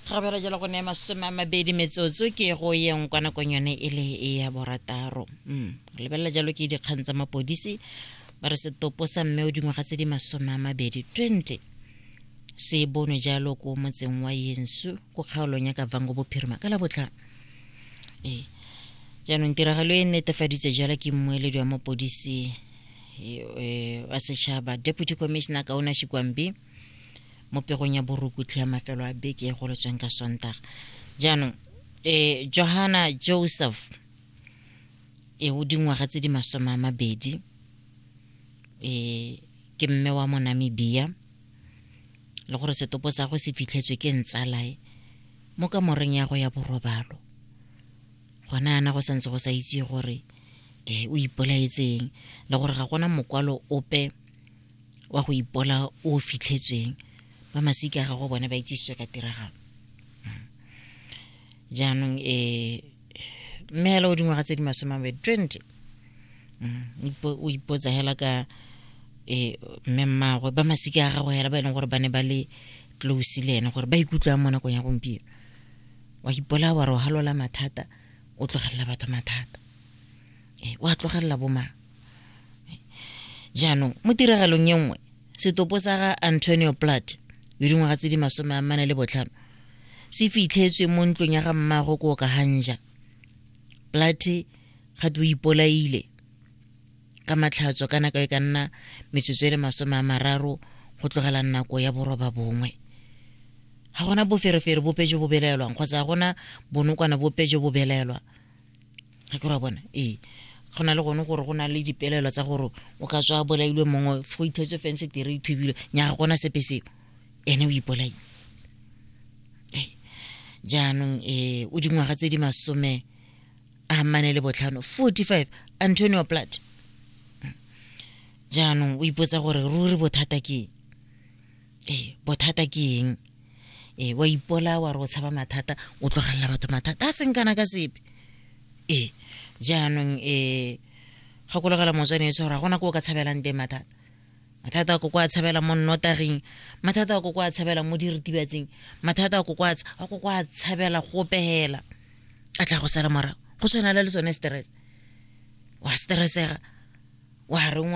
ga bera jalo go ne masome a mabedi metsotso ke go yeng kwa nakong yone e le e ya borataro mm. lebelela jalo ke dikgang tsa mapodisi ba re setopo sa mme o dingwaga tse di masome a mabedi 20 se bonwe jalo ko motseng wa yensu ko kgaolong ya kavango bophirima ka la botlhang ee jaanong tiragalo e netefaditse jalo ke mmueledi wa mapodisi e, e, wa setšhaba deputy commissioner kaona shikwambi mo pegong ya borukutlhi ya mafelo a beke e goletsweng ka sontaga jaanong e johana joseph e o dingwaga tse di masome a mabedi e ke mme wa monamibia le gore setopo sa go se fitlhetswe ke ntsalae mo kamoreng ya go ya borobalo gona yana go santse go sa itse gore um o ipolaetseng le gore ga gona mokwalo ope wa go ipola o fitlhetsweng ba masika gago bone ba itsisitswe ka tiragalo hmm. jaanong um eh, mme hela o dingwaga tse di masome mabedi twenty hmm. o ipotsa hela ka um mme mmagwe ba masika a gago hela ba e leng gore ba ne ba le close le ene gore ba ikutlwang mo nakong ya gompieno wa ipola wa re o halola mathata o tlogelela batho mathata Eh, wa tlogelela bomang eh, jaanong mo tiragalong e nngwe setopo sa ga antonio plat yo dingwaga tse di masome a mane le botlhano se fitlhetswe mo ntlong ya ga mmago ko ka hanja plat gate o ipolaile ka matlhatso ka nako e ka nna metsotso e le masome a mararo go tlogela nako ya boroba bongwe ga gona boferefere bope jo bo belaelwang kgotsa ga gona bonokwana bope jo bo belaelwang ga ke ra bona ee go na le gone gore go na le dipelelo tsa gore o ka tswa bolailwe mongwe go ithotse fense tere ithubile nyaga gona sepe seo ene o ipolaile jaanong um o dingwaga tse di masome a mane le botlhano 45 antonio plat jaanong o ipotsa gore ruri bothata ke ee bothata ke eng ee wa ipola wa re o tshaba mathata o tlogelela batho mathata a seng kana ka sepe ee jaanong ee gakologela motswane e tshwara gona ko o ka tshabelang teng mathata mathata a ko kwa tshabela mo nnotaging mathata a ko kwa tshabela mo diritibatsing mathata a ko kwa a ko kwa tshabela go pehela a tla go sala morago go tshwana le sone stress wa stressega wa reng